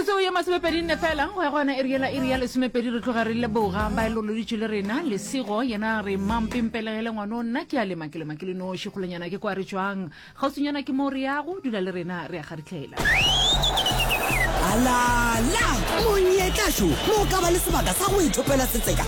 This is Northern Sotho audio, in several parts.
metsotso ye masomepedi nne fela go ya gona e riela e ria lesomepedi re tloga re leboga ba e loloditše le rena lesego yena re mampempelegele ngwano nna ke a lema ke lema ke le noši kgolonyana ke kwa re tswang kgauswinyana ke moo re yago dula le rena re a garitlhela alala monyetlašo mo ka ba le sebaka sa go ithopela setseka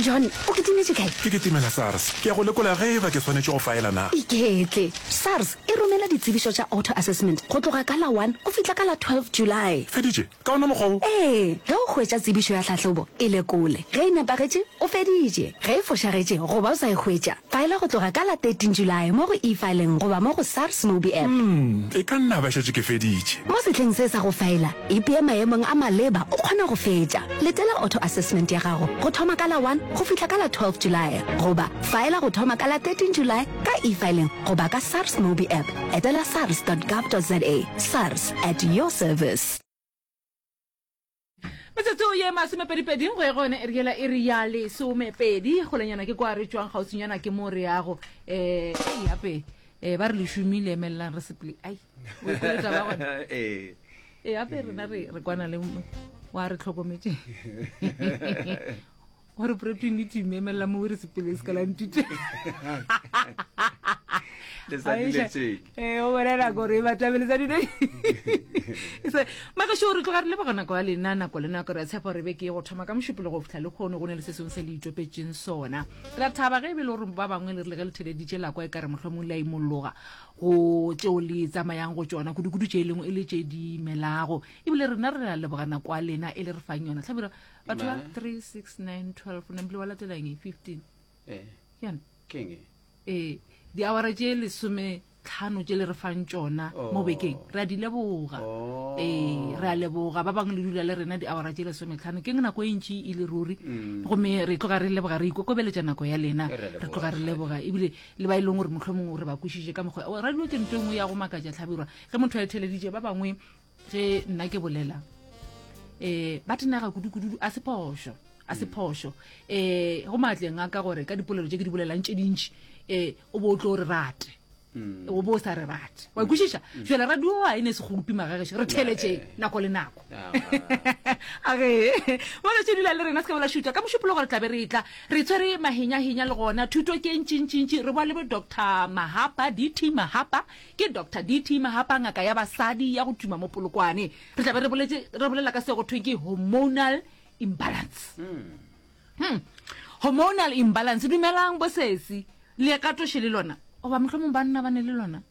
John, o kitimetše kae? Ke kitimela SARS. Ke ya go lekola ge eba ke swanetše go faela na. Iketle. SARS e romela ditsebišo tša auto assessment go tloga ka la one go fihla ka la twelve July. Feditše? Ka ona mokgwa wo? Ee, ge o hwetša tsebišo ya tlhahlobo, e lekole. Ge e nepagetše, o feditše. Ge e fošagetše goba o sa e hwetša, Faela go tloga ka la 13 Julae mo go e-fileng goba mo go SARS Mobi App. Umm, e ka nna ba šetše ke feditše. Mo sehleng se sa go faela, ipee maemong a maleba o kgona go fetša. Letela auto assessment ya gago go thoma ka la 1 go fihla ka la 12 Julae goba faela go thoma ka la 13 Julae ka e-fileng goba ka SARS Mobi App. Etela sars dot gov dot za. Sars, at your service. metsotso ye masomepedipedi go ya gone re yela e re ya lesomepedi golenyana ke kwa re tswang gautsinyana ke mo re yago um yape um ba re le šomile emelelang re seple ai ee gape rena re kwana le wa re tlhokometseng gore protein le team emelela mo were sepele se ka la ntute o bolela gore e batabele tsa dine maka sure tloga re le bagona kwa lena nako le nako re a tshepa gore be ke go thoma ka mošupolo go fitlha le kgone go ne le se sengwe se le itopetseng sona re a thaba ge e be le gore ba bangwe le re le ge le theleditše la kwa e ka re mohlomong le a imologa go tšeo le tsamayang go tsona kudu-kudu tše e lengwe e le tše di melago ebile rena re a lebogana kwa lena e le re fang yona tlhabelo batho ba Nine. 3 6 9 12 o nempile wa latela eng 15 Eh, ke yone ke eng e? ee diawara tše lesome tlhano tše le re fang tšona Oh. mo bekeng re a di leboga Oh. ee re a leboga ba bangwe le dula le rena diawara tše lesome tlhano ke nako e ntši e le ruri Mm. gomme re tloga re leboga re ikokobeletša nako ya lena Re a leboga, re tloga re leboga ebile le ba e leng gore mohlomongwe re ba kwešiše ka mokgwa o radio ke nto e nngwe ya go makatša tlhabirwa ge motho a etheleditše ba bangwe ge nna ke bolela um ba tenega kudukududu a se phošo a se phošo um go maatleng a ka gore ka dipolelo tse ke di bolelang tse dintšhi um o bo o tlo re rate mm. o bo o sa re rate wa ikwešiša mm. fela radio a e ne se golopi magagešo re theletše eh. nako le nako ah, ah. age bone tse dula le rena se ka bola šuta ka mošupolo gore tlabe re tla re tshwere mahenyahenya le gona thuto ke ntšintšintši re boa le bo doctor mahapa dt mahapa Ke Doctor DT Mahapa, ngaka ya basadi ya go tuma mo Polokwane. Re tla be re boletše, re bolela ka se go thweng ke hormonal imbalance. Hmm. Hormonal imbalance, dumelang bo sesi. Le ya ka toše le lona? Goba mohlomong banna ba ne le lona?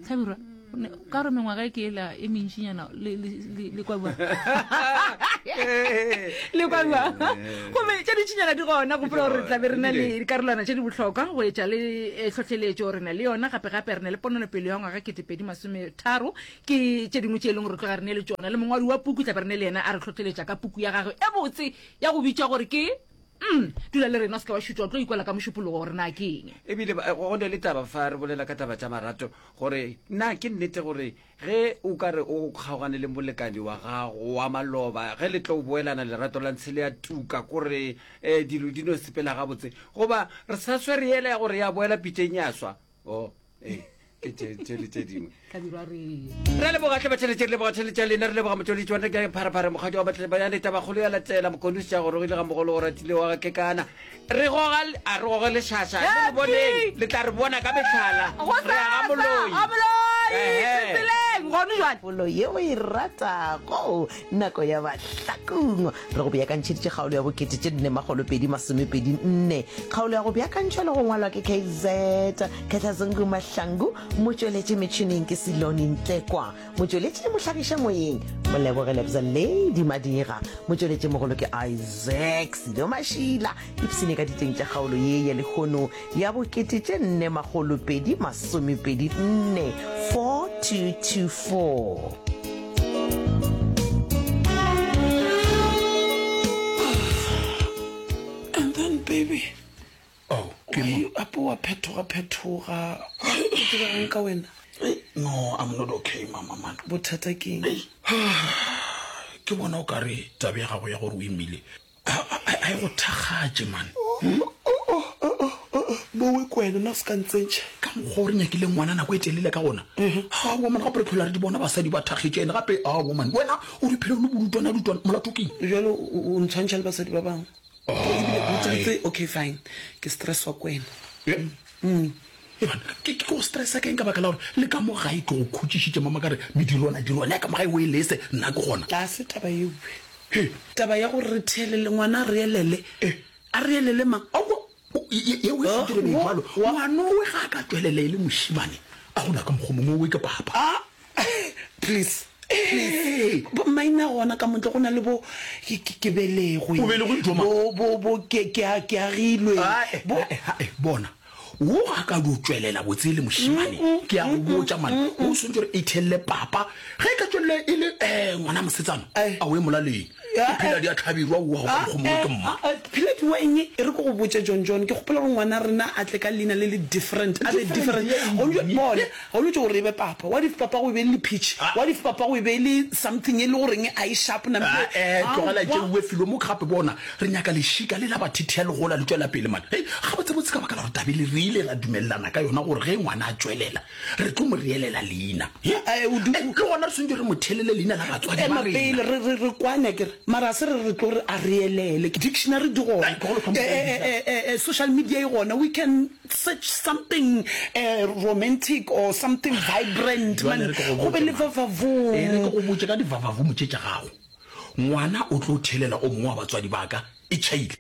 Tlhabirwa, o ne- ka gore mengwaga e ke ela e mentšinyana, le, le, le le kwa bua le kwa bua gomme tša ditšhinyana di gona gopola gore re tlabe re na le dikarolwana tše di bohlokwa go etša le eh, tlhohleletšo re na le yona gape-gape re na le pononopelo ya ngwaga ketepedi masometharo ke tše dingwe tše e leng gore re tloga re ne le tšona le mongwadi wa puku tlabe re ne le yena a re tlhohleletša ka puku ya gagwe e botse ya go bitša gore ke mm dula le rena o seke wa šutšwa o tlo ikwela ka mošupologo gore na ke eng ebile ba- go ne le taba fa re bolela ka taba tša marato gore na ke nnete gore Ge o ka re o kgaogane le molekani wa gago wa maloba, ge le tlo boelana lerato la ntshe le a tuka kore um dilo di no sepela gabotse, goba re sa swere yela ya gore ya boela pitšeng ya swa. O, ee, ke tše tše le tše dingwe. Ka dirwa re Re a leboga hle batšheletše, re leboga tšheletše ya lena, re leboga motšweletši wa nna ke pharephare, mokgadi wa batle- ba ya leta bagolo ya latela, mokonosi ja gorogile ga mogolo o ratile wa ga kekana. Re goga, a re goge lešaša, le le boneng, le tla re bona ka mehlala. Re ya ga moloi. A moloi, tseleng, gone jwale. Polo ye o e ratago, nako ya bahlakungwa. Re go beakantšheditše kgaolo ya bokete tše nne makgolo pedi masomepedi nne. Kgaolo ya go beakantšhwa le go ngwalwa ke KZ. Khetlazungu Mahlangu, motšweletši metšhineng ke Silone Ntlekwa. Motšweletši le mohlagiša moyeng, Moleboge Lebza Lady Madira. Motšweletši mogolo ke Isaac Silo Mašila. Ipshine ka diteng tša kgaolo ye ya lehono ya bokete tše nne makgolo pedi masomepedi nne 4224. And then baby Oh, ke mo. Why apo wa phethoga phethoga? O dirang ka wena? Hey, no, I'm not okay, mama man. Bothata ke eng? Hey. Ke bona o ka re tabe ya gago ya gore o imile. Ha ha e go thakgatše man. Hmm? Bowe ko wena na se ka ntsentšha. Ka mokgwa o re nyakile ngwana nako e telele ka gona. Ha woman gape re phela re di bona basadi ba thakgetše ene gape ha woman. Wena o di phela o le bolutwana lutwana molato ke eng? Jalo o ntshwantšha le basadi ba bangwe. okay fine ke stress wa kwena ke go stressa keng ka baka la gore le ka mo gae ke go khutšišitše mama ka re medirwana dirwana ya ka mo gae o e lese nna ke gona ga se taba ewe taba ya gore re theelele ngwana a re elele a re elele mang yeo e fetile meibalo ngwanowe ga a ka tswelela e le mošimane a gona ka mokgwa mongwe owe ke papa please maina gona ka montle go na le bo ke belegwe ke agilwe bona wo ga ka di o tswelela botse le mošimane ke a go botsa mane o swantse gore e thelele papa ge e ka tswelela e le um ngwana mosetsana a o e molaleng phila di a tlhabirwa wa go kgomoe ke mma phila di weng e re ko go botse john john ke gopola gore ngwana rena a tle ka leina le le different a be different go lwe bone go lwe gore e be papa wa dife papa go be le pitch wa dife papa go be le something e le goreng a e sharp na mpe eh tlogela tse uwe filo mo gape bona re nyaka le shika le la ba thithia le gola le tswela pele mane hey ga botse botse ka baka la gore tabele re ile ra dumelelana ka yona gore ge ngwana a tswelela re tlo mo reelela leina le gona re swantse re mo thelele leina la batswadi ba rena re re re kwane ke re mara se re re tlo re a reelele ke dictionary di gona social media e gona we can search something uh, romantic or something vibrant man go be le vavavo e re go botse ka di vavavo motse tsa gago ngwana o tlo thelela o mongwe wa batswadi baka e chaile